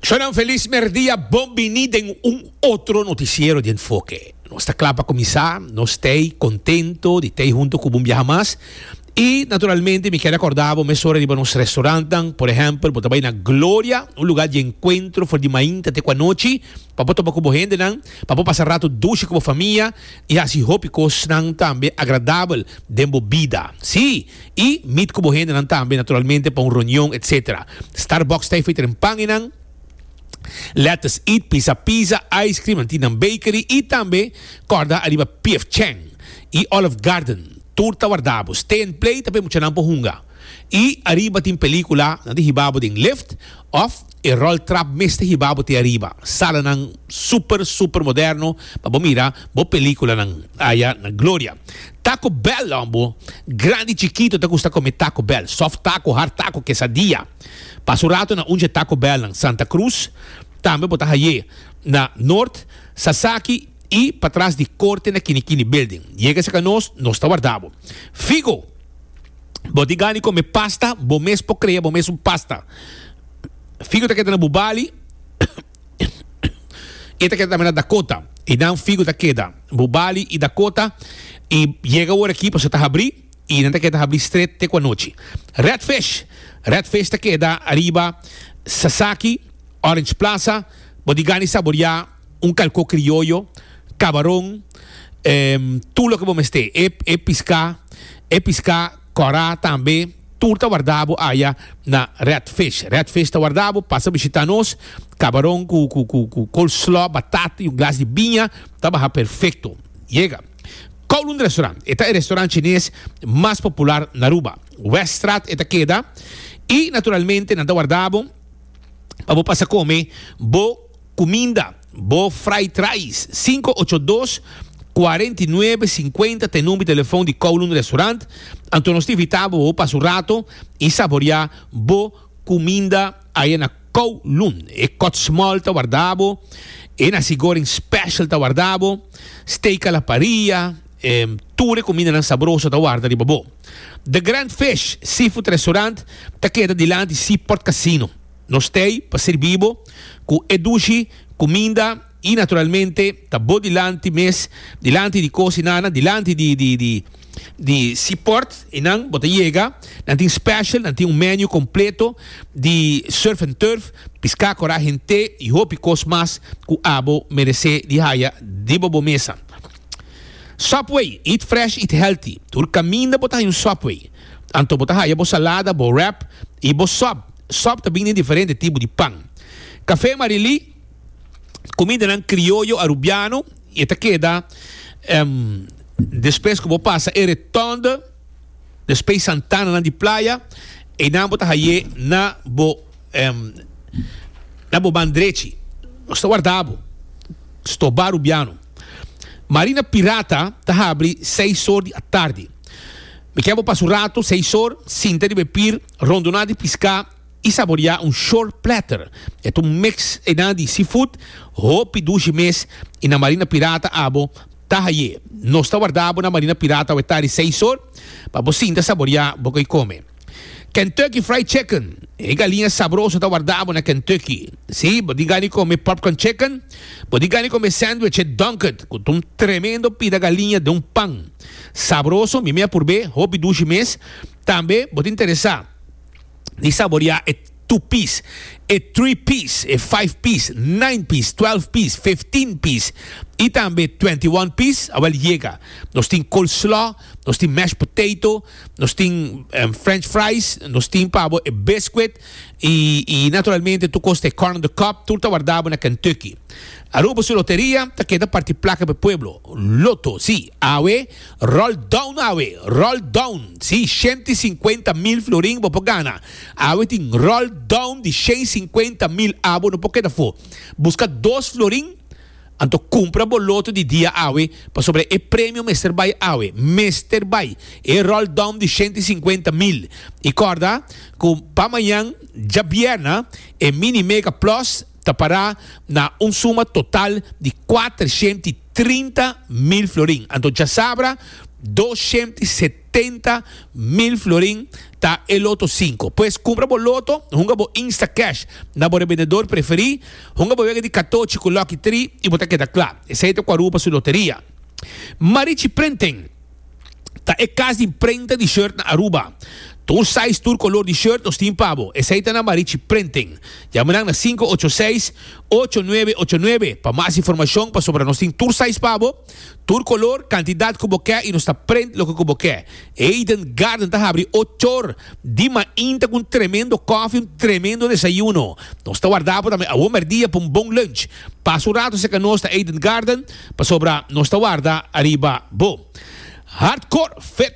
Shonan feliz merdia, bon bini den un otro noticiero di Enfoke. Nos ta kla pa kuminsá, nos t'ei kontento di t'ei huntu ku bo un biaha mas. I naturalmente mi kier rekordá bo mesora riba nos restaurantnan, por ehèmpel bo ta bai na Gloria, un lugá di enkuentro for di mainta te ku anochi, pa bo toba ku bo hendenan, pa bo pasa ratu dushi ku bo famia i hasi hopi kosnan tambe agradabel den bo bida. Sí, i mit ku bo hendenan tambe, naturalmente pa un reunion, etc. Starbucks ta e friteren pan enan, Lettuce It, Pisa Pizza, Ice Cream, nan tindan bakery i tambe kòrda ariba P.F. Chang i Olive Garden. Tur ta wardá bo. Stay and Play ta pa e muchanan por hunga. I ariba tin pelíkula, nan tin hiba bo den lift òf. E rol trap mester hiba bo te ariba. Salanan super super moderno pa bo mira bo peliculanan aya na Gloria. Taco Bell lo bo grandi chikito ta gusta come Taco Bell, soft taco, hard taco, quesadilla. Pasa un rato na unje Taco Bell nan Santa Cruz, tambe bo ta haye na Noord, Sasaki y patras di Corte na Kini Kini Building. Yega cerca nos, nos ta warda bo. Figo! Bo tin gana di come pasta, bo mes por crea bo mes un pasta. Figu ta keda na bu bali, e ta keda tambe na Dakota. Y nan figu ta keda bu bali y Dakota y yega ora aki paso ta habri y nan ta keda habri stret te cu anochi. Redfish, redfish ta keda ariba Sasaki, Orange Plaza, bo tin gana di saboria. Un kalko krioyo, kabaron, em, tur loke bo mester. E, e piská, e piská, kòrá tambe, tur ta wardá bo aya na Red Fish. Red Fish ta wardá bo, pasa bishitá nos, kabaron ku, ku, ku, ku coleslaw, batata i un glas di biña ta baha perfekto. Yega. Kowloon Restaurant, e ta e restaurant chines mas popular na Aruba. Weststraat e ta keda, i naturalmente nan ta wardá bo pa bo pasa kome bo. Cuminda, bo fry trais, cinco ocho dos, cuarenta y nuebe cincuenta ta e number di telefoon di Kowloon Restaurant, anto nos ta invita bo pa pasa un rato y saborea bo cuminda aya na Kowloon. E kòtsmòl ta warda bo, e nasi goreng special ta warda bo, steak a la parrilla, tur e cumindanan sabroso ta warda riba bo. The Grand Fish Seafood Restaurant ta keda dilanti Seaport Casino. Nos t'ei pa sirbi bo ku e dushi kuminda i naturalmente ta bo dilanti mes, dilanti di kos i nana, dilanti di di di di si pòrt i nan bo ta yega. Nan tin special, nan tin un menu kompleto di surf and turf, piská, kora, hent'é i hopi kos mas ku abo meresé di haya riba bo mesa. Subway, eat fresh, eat healthy, tur kaminda bo ta haya un Subway, anto bo ta haya bo salada, bo wrap i bo sub. Sòp ta bini diferente tipo di pan. Kafé Marilí, kumindanan krioyo arubiano i e ta keda despues ku bo pasa e retònde di Space Santananan di playa, einan bo ta hai'é na bo na bo man drechi. Nos ta warda bo. Stobá arubiano. Marina Pirata ta habri seis or di atardi. Mi ke bo pasa un ratu, seis or, sinta riba e pir. Rondoná di piská i saboriá un shore platter. E ta un mix einan di seafood, hopi dushi mes i na marina pirata abo ta haye. Nos ta wardá bo na marina pirata we tari seis or pa bo sinta saboriá bo ko'i kome. Kentucky Fried Chicken, E galiña sabroso ta wardá bo na Kentucky. Sí, bo di gani kome popcorn chicken, bo di gani kome sandwiche dunked ku ta un tremendo pida galiña den un pan. Sabroso, mi mei a purb'é, hopi dushi mes. Tambe bo ta interesá di saboriá e two piece, e three piece, e five piece, nine piece, twelve piece, fifteen piece i tambe twenty one piece? Awèl yega. Nos tin coleslaw, nos tin mashed potato, nos tin french fries, nos tin pa bo e biscuit i i naturalmente tur cos ta e corn on the cob, tur ta wardabo na Kentucky. Aruba su loteria ta keda parti placa pa e pueblo. Lotto, sí, awe. Roll down awe, roll down. Sí, shenti sinkuenta mil florin bo por gana. Awe tin roll down di shen sinkuenta mil abo no por keda for. Buska dos florin, anto kumpra bo loto di dia awe, pasobra e premio mester bai awe. Mester bai! E roll down di shenti sinkuenta mil. I korda ku pa mañan, djabièrna, e Mini Mega Plus ta pará na un suma total di kuater shent i trinta mil florin. Anto djasabra dos shent i setenta mil florin ta e loto sinku. Pues kumpra bo loto hunga bo Instacash na bo rebendedor preferí, hunga bo wega di katochi ku Lucky Three i bo ta keda kla. Esei ta kua rupa su loteria. Marichi Prenten. ta e kas di prenta di short na Aruba. Ta un sais tur kolor di short nos tin pa bo. Esei ta na Marichi Printing. Yama nan na sinku ocho seis, ocho nuebe ocho nuebe pa mas informashon pasobra nos tin tur sais pa bo, tur kolor, kantidat ku bo ke i nos ta print loke ku bo ke. Eden Garden ta habri ocho or di mainta ku un tremendo kofi, un tremendo desayuno. Nos ta warda bo tambe awor mèrdia pa un bon lunch. Pasa un rato seka nos ta ei den garden, pasobra nos ta warda ariba bo. Hardcore fit!